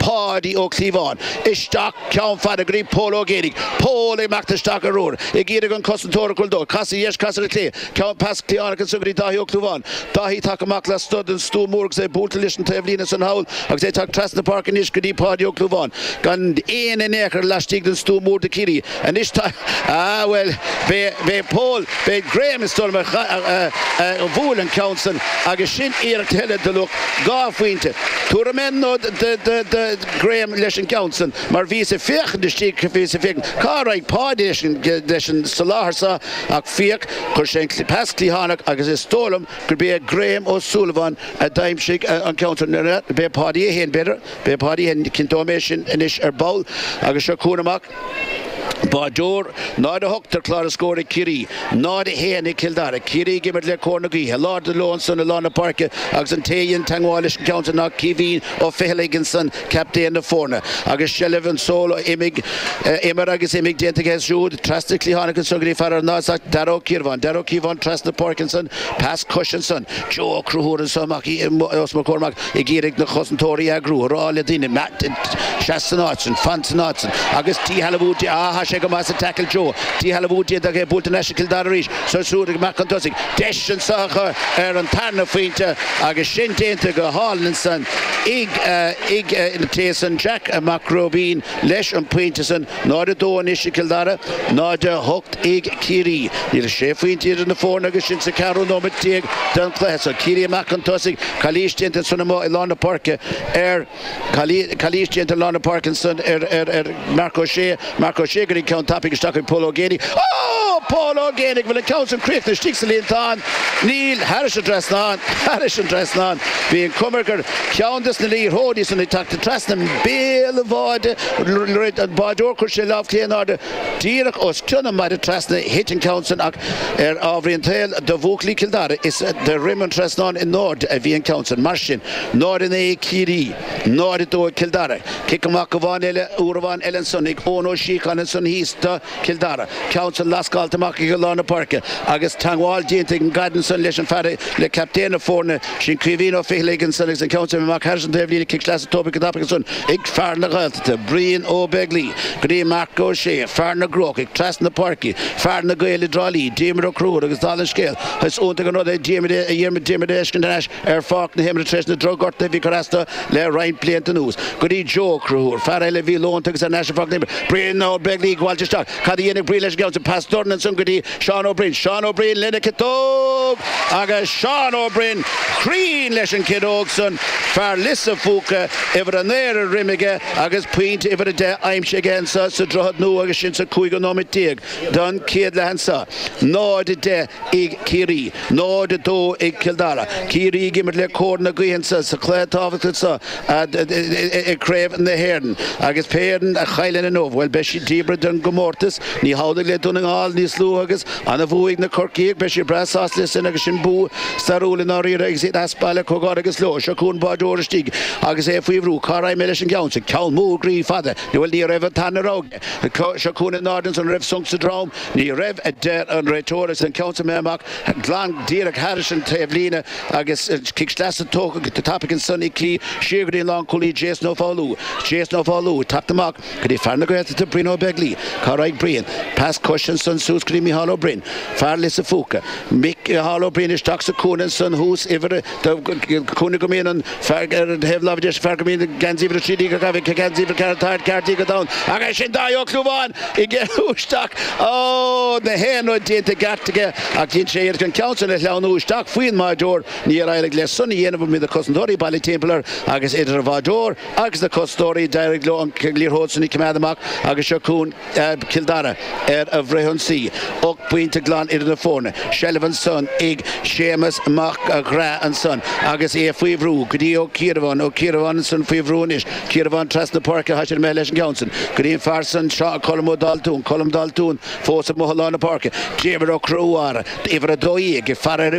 Páidí Ó Clúmháin, isteach, ceann fada go dtí Pól Ó Géibheannaigh, Pól ag imeacht isteach ar úr, ag iarraidh an cosantóir a chur dó, cas ar dheis, cas ar chlé, ceann pas cliathánach ansan go dtí Dáithí Ó Clúmháin, Dáithí tagtha amach lasmuigh den stua mór agus é buailte leis an taobhlíne ansan thall agus é ag teacht trasna na páirce anois go dtí Páidí Ó Clúmháin, gan aoinne in aon chor laistigh den stua mór do Chiarraí. Anois tá, ah, bhuel, b'é Pól, b'é Graham is dóigh liom a bhuail an ceann san agus sin iarracht eile de luach dhá phointe. Tabharfaidh mé nod do Graham leis an gceann san mar bhíos ag féachaint istigh, bhíos ag féachaint cá raibh Páidí leis an soláthar seo ach féach, chuir sé an pas cliathánach agus is dóigh liom gurb é Graham Ó Súilleabháin a d'aimsigh an ceann san, b'fhéidir Páidí é féin, b'fhéidir, b'fhéidir Páidí é féin, cinnteoidh mé sin anois ar ball agus seo chugainn amach. Báideoir, 0 a 8 ar chlár an scóir ag Ciarraí, 0, 1 ag Cill Dara. Ciarraí ag imirt le cóir na gaoithe. Lámha in airde leo ansan i lár na páirce agus an té a dhein teagmháil leis an gceann sin ná Caoimhín Ó Ficheallaigh ansan, captaen na foirne. Agus seilbh anseo, imigh, imir agus imigh déanta aige siúd trasna cliathánach ansan go dtí fear an Náis, Dara Ó Ciarabháin. Dara Ó Ciarabháin trasna páirce ansan, pas cois ansan. Joe Ó Conchúir ansan amach os mo chomhair amach. ag iarraidh na cosantóirí a eagrú, a rá le daoine, seas san áit sin, fan san áit sin, agus díshealbhú déanta, ah, tá sé go maith sa tackle Joe, díshealbhú déanta ach é buaite thar n-ais ag Cill Dara arís, seo siúd ag amach chun tosaigh, deis anso acu ar an tarna phointe agus sin déanta go hálainn ansan ag, ag, ag, an té san, Jack Mac Róibín leis an bpointe san. 0, 2 anois ag Cill Dara, 0, 8 ag Ciarraí. Níl ach sé phointe idir na foirne agus sinn sa cheathrú nóiméad déag den chluiche. Seo Ciarraí amach chun tosaigh. Calaois déanta ansin amuigh i lár na páirce ar Calaois déanta i lár na páirce ansin ar Marc Ó Sé. Marc Ó Sé go dtí an ceann tapaidh isteach ag Pól Ó Géibheannaigh. Pól Ó Géibheannaigh an bhfuil an ceann sin críochnaithe istigh sa líontán. Níl thairis an trasnán. Thairis an trasnán. Bhí an chuma air gur ceann des na liathróidí san ag teacht trasna béal an bháide. dhruid an báideoir, chuir sé lámh chlé in airde díreach os cionn an mhaide trasna, thit an ceann san ach ar ámharaí an tsaoil do bhuachaillí Chill Dara is de dhroim an trasnáin i n-airde a bhí an ceann san. Mar sin, 0, 9 ag Ciarraí, 0, 2 ag Cill Dara. Cic amach amháin eile, uair amháin eile ansan ag Eoin Ó Síocháin ansan thíos do. Cill Dara. Ceann san lascáilte amach ag lár na páirce agus teangmháil déanta ag an gcaid ansan leis an fear le captaen na foirne sin Caoimhín Ó Ficheallaigh ansan agus an ceann san amach thairis an taobhlíne cic sleasa tógtha go tapaidh ansan ag fear na Gaeltachta, Brian Ó Beaglaoi, go dtí Marc Ó Sé, fear na gCrócach, trasna na páirce, fear na Gaeil i dTrá Lí, Diarmuid Ó Conchúir agus dála an scéil is iontach an rud é Diarmuid a Dhiarmuid Diarmuid a fheiscint thar n-ais. ar pháirc na himeartha tar éis na drochghortuithe a bhí ag cur as do le roinnt blianta anuas. Go dtí Joe Ó Conchúir, fear eile a bhí leonta agus ar ais ar pháirc na himeartha. Brian Ó Beaglaoich, Bhailte isteach. Cad a dhéanfaidh Brian leis an gceann? Pas dorn ansan go dtí Seán Ó Briain. Seán Ó Briain lena chiotóg! Agus Seán Ó Briain cruinn leis an gciotóg san. Fear Lios an Phúca, uimhir a naoi ar a dhroim aige agus pointe uimhir a deich aimsithe aige anseo sa Droichead Nua agus sin sa chúigiú nóiméad déag don chéad leath anseo. 0-10. ag Ciarraí, 0, 2 ag Cill Dara. Ciarraí ag imirt le cóir na gaoithe anseo sa chluiche tábhachtach seo i gCraobh na hÉireann agus pé fhoireann a chailleann inniu, bhuel, beidh siad díbeartha den gcomórtas. Ní hamhlaidh le Dún na nGall, níos luaithe agus an bua ag na Corcaígh, beidh siad breá sásta leis sin agus sin bua stairiúil i ndáiríre agus iad as baile comhghairdeas leo. Seo chugainn báireoir istigh agus é faoi bhrú. Cá raghaidh mé leis an gceann sin? Ceann mór, groí, fada. Bhuel, ní raibh an t-ainm a raibh. Seo cúinne an ardáin so, an raibh sonc sa drom. Ní raibh, a deir an réiteoir, agus an ceann san imithe amach glan díreach thairis an taobhlíne agus cic sleasa tógtha go tapaidh ansan ag Ciarraí siar go dtí an lánchúlaí Jason Ó Foghlú. Jason Ó Foghlú ag teacht amach go dtí fear na Gaeltachta, Brian Ó Beaglaoich. Cá raghaidh Brian? Pas coise ansan suas go dtí Micheál Ó Braoin, fear Lios an Phúca. Micheál Ó Braoin isteach sa cúinne ansan thuas, uimhir a. de chúnamh go mbíonn an fear ar thaobh láimhe deis an fear go mbíonn geansaí uimhir a trí déag, geansaí uimhir a ceathair déag ar a dhrom aige, sin Dáithí Ó Clúmháin ag dul isteach. Ó! nach aon rud déanta i gceart aige ach dhein sé iarracht an ceann san a shleamhnú isteach faoin mbáireoir. Níor éirigh leis san a dhéanamh bhí na cosantóirí bailithe timpeall air agus idir an bháireoir agus na cosantóirí d'éirigh leo an liathróid san a choimeád amach agus seo chugaibh Cill Dara ar a bhfrithionsaí, ocht bpointe glan idir na foirne. Seilbh ansan ag Séamus Mac Craith ansan agus é faoi bhrú go dtí Ó Ciarabháin. Ó Ciarabháin ansan faoi bhrú anois. Ciarabháin trasna na páirce, tá sé imithe leis an gceann san go dtí an fear san, Colm Ó Daltúin. Colm Daltúin fós amuigh i lár na páirce. Diarmuid Ó Conchúir, uimhir 12, ag faire ar uimhir.